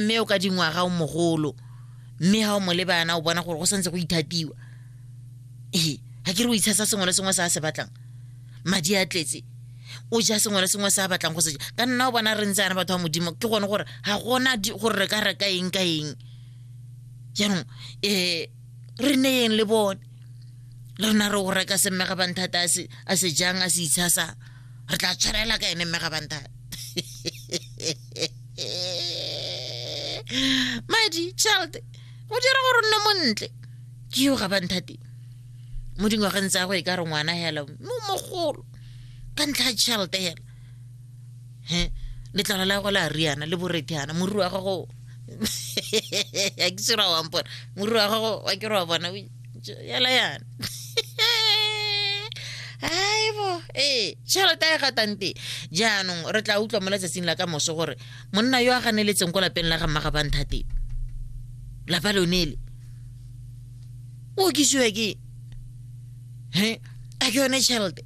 mme o ka dingwaga o mogolo mme ga o mo lebana o bona gore go santse go ithatiwa ee ga ke re o itshasa sengwe le sengwe se a se batlang madi a tletse o ja sengwe le sengwe se a batlang go se ja ka nna o bona re ntse ana batho ba modimo ke gone gore ga gona di- gore re ka reka eng ka eng jaanong um re neyeng le bone le rena re o reka semmega banthata a se jang a se itshasang re tla tshwarela ka ene mme ga banta madi child go dira gore nne montle ke yo ga banthate mo dingwageng tsa go e ka re ngwana hela mo mogolo ka ntlha ya tšhelete hela he letlalo la go la riana le borethana morui wa gago a ke sera wampona morui wa gago wa ke re wa bona yala yana aibo ee tšhelete ya gatante jaanong re tla utlwa mo letsatsing la ka moso gore monna yo a ganeletseng ko lapeng la ga mmaga banthate lapa lonele o okisiwa ke he a ke yone tšhelete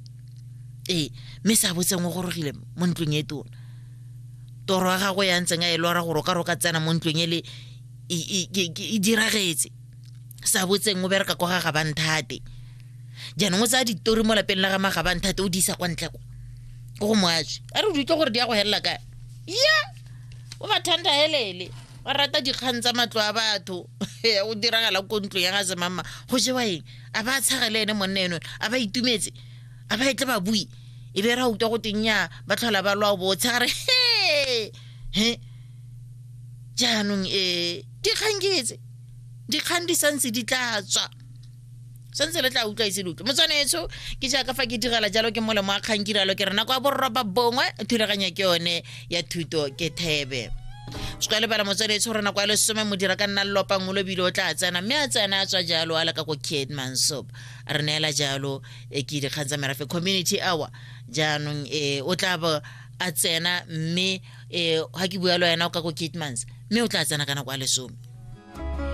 ee mme sa botseng o gorogile mo ntlong e tona toro ya gago ya ntseng a e lora gore o ka re o ka tsena mo ntlong e le e diragetse sa botseng o bereka kwa ga gabanthate jaanong o tsaya ditori mo lapeng la ga magabanthate o di isa kwa ntle kwa ko go moatswe a re di utlwe gore di ya go helela kae ya o ba thanda helele ba rata dikgang tsa matlo a batho Eh, o diragala ko ntlo ya ga semama go jewa eng a ba tshage le ene monna eno a ba itumetse a ba etle ba bui e be ra utlwa go teng ya ba tlhola ba lwa bo tshegare he he jaanong um dikgang ke etse dikgang di santse di tla tswa santse re tla utlwa ise loke motswanetsho ke jaaka fa ke direla jalo ke molemo wa kgang kiralo ke rena kwa borroba bongwe thulaganyo ke yone ya thuto ke thebe se ka lebala motswanetsho rena kwa lesome modira ka nna lopa ngolo bile o tla tsena mme a tsena a tswa jalo a leka ko kate mansop a re neela jalo e ke dikgang tsa merafe community hour jaanong e o tla bo a tsena mme um ga ke bua le wena o ka ko catemans mme o tla tsena ka nako ya lesome